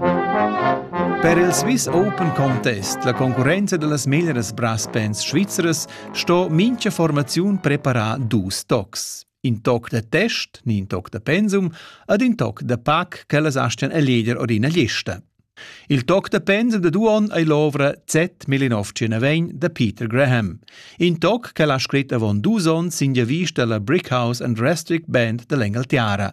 Per il Swiss Open Contest, la concurrenza da las meglras brass bands svizzeras, sto mincha formaziun preparar dus tocs. In toc da test, ni in toc da pensum, ad in toc da pac ch'ellas astgan eleger or ina lista. Il toc da pensum da Duon ei l'ovra Z 1909 da Peter Graham. In toc ch'el ha scrit avon dus onns sin vista alla Brickhouse and Restrict Band dall'Engaltiara.